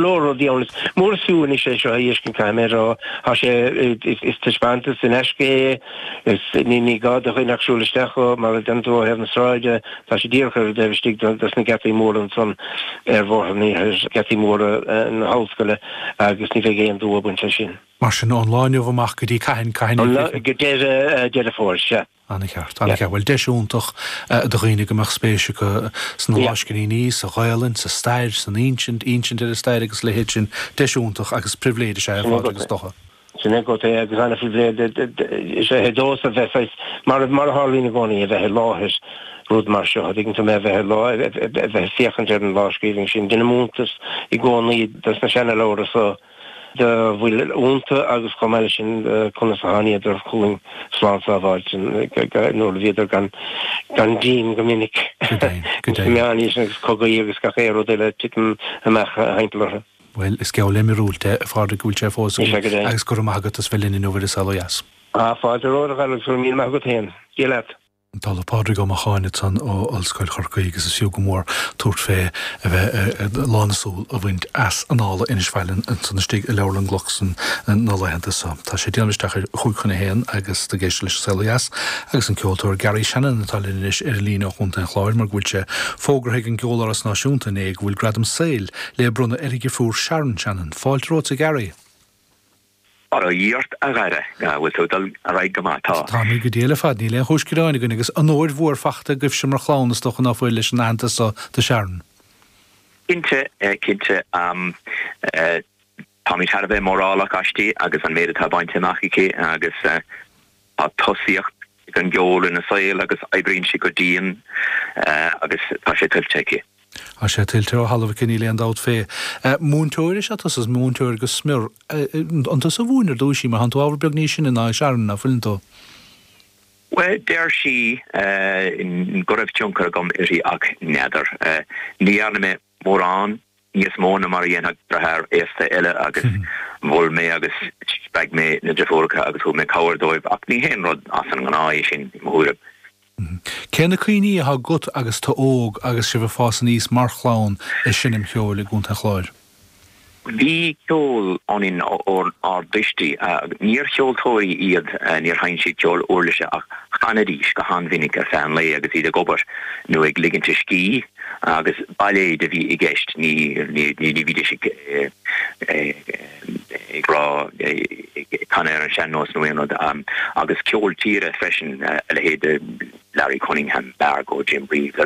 leor rudaí ann. Is mór suim anois é seo go léir a fheiscint, caithfidh mé a rá. Tá sé, is taispeántas in aisce é, is ní gá do dhuine ach siúl isteach mar a dhéanann tú ó thaobh na sráide. Tá sé díreach ar an dtaobh istigh dos na geataí móra ansan ar Bhóthar an Iarthair, geataí móra na hollscoile agus ní bheidh aon dua ag baint leis sin. Mar sin, ón lá inniu amach go dtí, cathain, cathain? Go deireadh Deireadh Fómhair, sea. Ana cheart, ana cheart. Bhuel, deis iontach do dhaoine go mbeadh spéis acu sna lámhscríbhinní, sa Ghaelainn, sa stair, san insint, insint ar an stair agus a leithéid sin. Deis iontach agus pribhléid is ea é, a Phádraig, is dócha. Sin é, sin é, sin é agat é agus ana phribhléid is ea é domhsa a bheith saghas, mar a tharlaíonn i gcónaí, a bheith i láthair rud mar seo, a' dtuigeann tú mé, a bheith i láthair, a bheith ag féachaint ar an lámhscríbhinn sin. Deinim iontas i gcónaí de na seanaleabhra so, dá bhfuil iontu agus chomh maith leis sin conas a thángadar chugainn slán sábháilte nuair a bhíodar gan díon go minic sa Mheánaois agus cogaí agus gach aon rud eile ag titim amach timpeall orthu. Bhuel, is geall le miorúilt é, a Phádraig, go bhfuil sé fós againn, agus go raibh maith agat as bheith linn inniu ar An Saol ó Dheas. A Phádraig, go raibh maith agat, a Helen. Dia leat. Pádraig Ó Macháin ansan ó Ollscoil Chorcaí agus is fiú go mór tabhairt féachaint, a bheith lán na súl a bhaint as Annála Inis Faithleann ansan istigh i nGailearaí Glucksman na laethanta so. Tá sé ag déanamh isteach ar a chúig chun a haon agus tú ag éisteacht leis An Saol ó Dheas agus an ceoltóir Garry Shannon atá linn anois ar an líne ó Chontae an Chláir mar go bhfuil sé fógartha ag an gCeoláras Náisiúnta inné go bhfuil Gradam Saoil le bronnadh ar a dheirfiúr Sharon Shannon. Fáilte romhatsa, a Garry! Go raibh maith agat, a Dháire, an bhfuil tú ag dul ar aghaidh go maith? Tá. Táimid go diail ar fad. Níl aon chúis gearáin againn, agus onóir mhór fachta agaibhse mar chlann, is dócha ná fuil, leis an aitheantas so do Sharon. Cinnte, cinnte. Táimid thar a bheith mórálach aisti agus an méid atá bainte amach aici, agus. Tá tosaíocht ag an gceol ina saol agus oibríonn sí go dian agus tá sé tuillte aici. Tá sé tuillte ó thalamh aici, níl aon dabht fé. Múinteoir is ea tusa, is múinteoir go smior. An tusa a mhúin ar dtúis í mar tánn tú ábhar beag níos sine ná Sharon, ná fuileann tú? Bhuel, deir sí go raibh tionchar agam uirthi ach n'fheadar. Ní dhearna mé. mórán níos mó ná mar a dhéanfadh deartháir aosta eile agus mhol mé agus spreag mé na deirfiúracha agus thug mé cabhair dóibh ach ní haon rud as an ngnáth é sin, i mo thuairim. Cé na cuimhní atá agat agus tú óg agus sibh ag fás aníos mar chlann ag seinm ceoil i gContae an Chláir? Bhí ceol ionann ár dtuistí. Níor cheoltóirí iad, níor sheinn siad ceol uirlise ach chanaidís go han-mhinic ar feadh an lae agus iad ag obair nó ag ligint a scíth, agus bailéid a bhí i gceist, ní bhídís ag rá, ag canadh ar an sean-nós nó aon rud, agus ceol tíre freisin, a leithéid de. Larry Cunningham, Margo, Jim Reeves.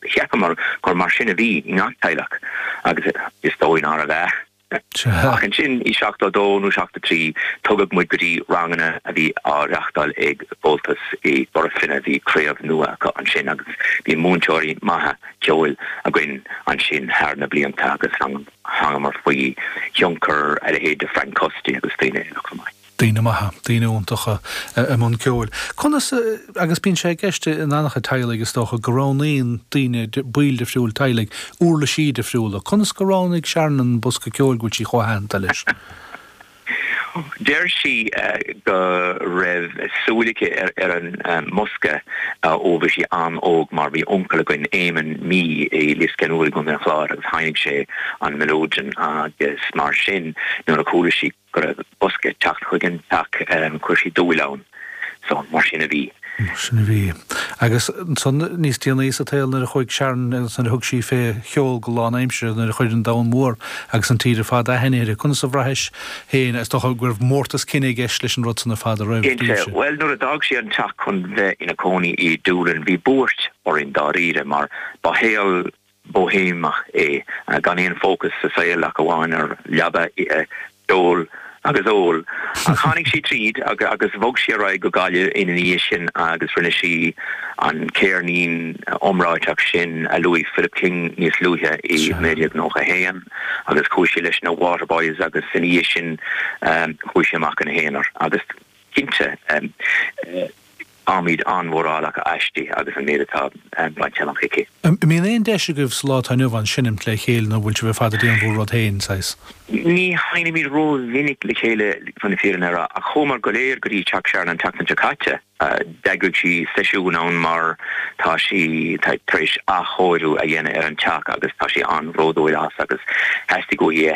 Cheapamar gur mar sin a bhí i ngach teaghlach, agus is dóigh nárbh ea. Ach ansin i seachtó a dó nó seachtó a trí, tugadh muid go dtí ranganna a bhí á reachtáil ag Comhaltas i gCora Finne. Bhí craobh nua acu ansin agus bhí múinteoirí maithe ceoil againn ansin thar na blianta agus thángamar faoi thionchar a leithéid de Frank Custy agus daoine eile chomh maith. daoine maithe, daoine iontacha i mbun ceoil. Conas, agus bíonn sé i gceist in an-chuid teaghlaigh is dócha, go roghnaíonn daoine, baill difriúil teaghlaigh, uirlisí difriúla. Conas gur roghnaigh Sharon an bosca ceoil, go bhfuil sí chomh haitheanta leis? Deir sí go raibh súil aici ar an mbosca ó bhí sí an-óg mar bhí uncail againn, Éamon Mí, i Lios Ceannúir i gContae an Chláir agus sheinn sé an melodeon agus mar sin nuair a chuala sí, go raibh bosca ag teacht chuig an teach, chuir sí dúil ann. So, mar sin a bhí. Mar sin a bhí. Agus ansan níos déanaí sa tsaol nuair a chuaigh Sharon agus nuair a thug sí fé cheol go lánaimseartha, nuair a chuir an domhan mór agus an tír ar fad aithne uirthi, conas a bhraithis féin, is dócha go raibh mórtas cine i gceist leis an rud san ar fad a raibh ar Cinnte. daoibhse? Bhuel, nuair a d'fhág sí an teach chun bheith ina cónaí i Doolin, bhí buairt orainn dáiríre mar ba shaol Boihéimeach é, gan aon fócas sa saol ach amháin ar leaba ithe, ceol agus ól. Ach tháinig sí tríd agus bhog sí ar aghaidh go Gaillimh ina dhiaidh sin agus rinne sí an ceirnín iomráiteach sin a luaigh Philip King níos luaithe i 1991 agus chuaigh sí leis na Waterboys agus ina dhiaidh sin chuaigh sí amach ina haonar agus cinnte Táimid an-mhórálach aisti agus an méid atá bainte amach aici. An mbíonn aon deis agaibh sa lá atá inniu ann seinimt le chéile nó bhfuil sibh ar fad ag déanamh bhur rud féin, saghas? Ní sheinimid rómhinic le chéile chun na fírinne a rá, ach chuamar go léir go dtí teach Sharon an tseachtain seo caite. D'eagraigh sí seisiún ann mar tá sí tar éis athchóiriú a dhéanamh ar an teach agus tá sí an-bhródúil as agus theastaigh uaithi a